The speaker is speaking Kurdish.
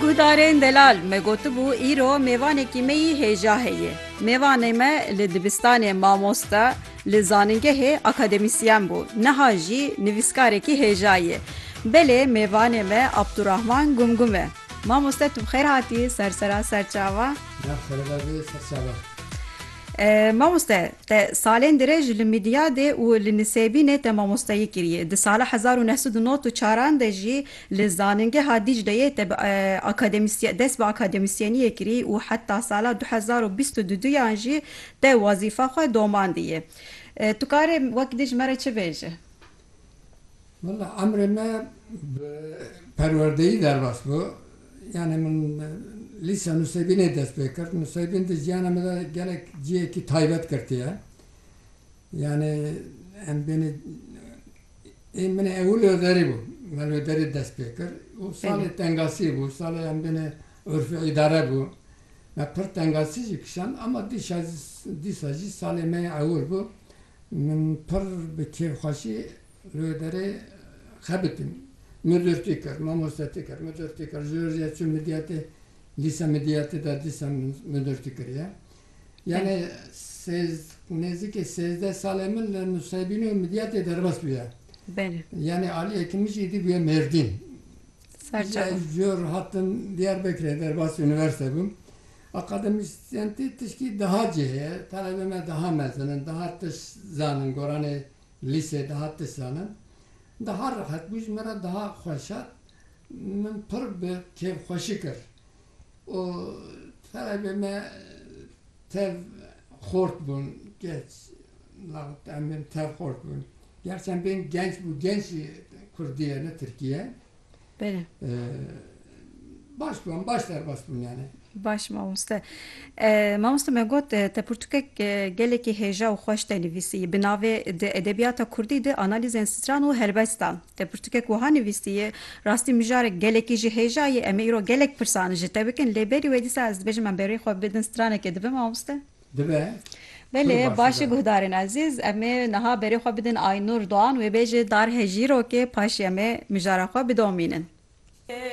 Guhdarên delal me gotibû îro mêvanekî me yî hêja heye. Mêvanê me li dibistanê mamoste, li zanîngehê akademîsyen bû, niha jî nivîskarekî hêja ye. Belê mêvanê me Abdurahman Gumgum e. Mamoste tu bi xêr hatî ser sera serçava. Nav sereba vê serçava. Mamoste te salên dirêj li Midiyadê û li Nisêbînê te mamosteyî kiriye. Di sala hezar û neh sed û nod û çaran de jî Li Zanîngeha Dîcleyê te bi akademisyen dest bi akademisyeniyê kirî û heta sala du hezar û bîst û du duyan jî te wezîfa xwe domandiyê. Tu karê wek dij me re çi bêjî? Wela emrê me bi perwerdeyî derbas bû. Yanî min lîsa nûsêbînê dest pê kir. Nûsêbîn di jiyana me de gelek cihekî taybet girtiye. Yanê em bênê ê min ew li Hwêderê bû. Me li Hwêderê dest pê kir û salê tengasî bû. Salê em bênê urfê îdare bû. Me pir tengasî jî kişand ama dîşa dîsa jî salê me yê ewil bû. Min pir bi kêfxweşî li Hwêderê xebitîm. Midûrtî kir, mamostetî kir, midûrtî kir. Ji Hurjê çûm Midyatê, lîse Midyatê de dîsa midûrtî kiriye. Yanê sêz nêzîkê sêzdeh salê min li Nusêbînê û Midyatê derbas bûye. Belê. Yanê aliyekî min jî êdî bûye Mêrdîn. Serçe. Ji ev jor hatim Diyarbekirê derbasî unîversîte bûm. Akademisyenî tişkî daha cih heye. Talebê me daha mezin in, daha tişt zanin, goranê lîsê daha tişt zanin. Daha rehet bû ji min re daha xweşat. Min pir bi kêfxweşî kir. û sereke me tev xort bûn geç laxit em bên tev xort bûn. Gerçi em bên genç bû genç jî Kurdî ye ne Tirkî ye. Bêne. Baş bû em baş derbas bûn yani. Baş mamoste. Mamoste me got te pirtûkek gelekî hêja û xweş te nivîsî. Bi navê Di edebiyata Kurdî de analîzên stran û helbestan. Te pirtûkek wiha nivîstiye, Rastî mijarek gelekî jî hêja ye, em ê îro gelek pirsan ji te bikin lê berî wê dîsa ez dibêjim em berî xwe bidin stranekê dibe mamoste? Dibe. Belê, baş e guhdarên ezîz, em ê niha berî xwe bidin Aynûr Doğan wê bê ji dar hejîrokê paşê em ê mijara xwe bidomînin.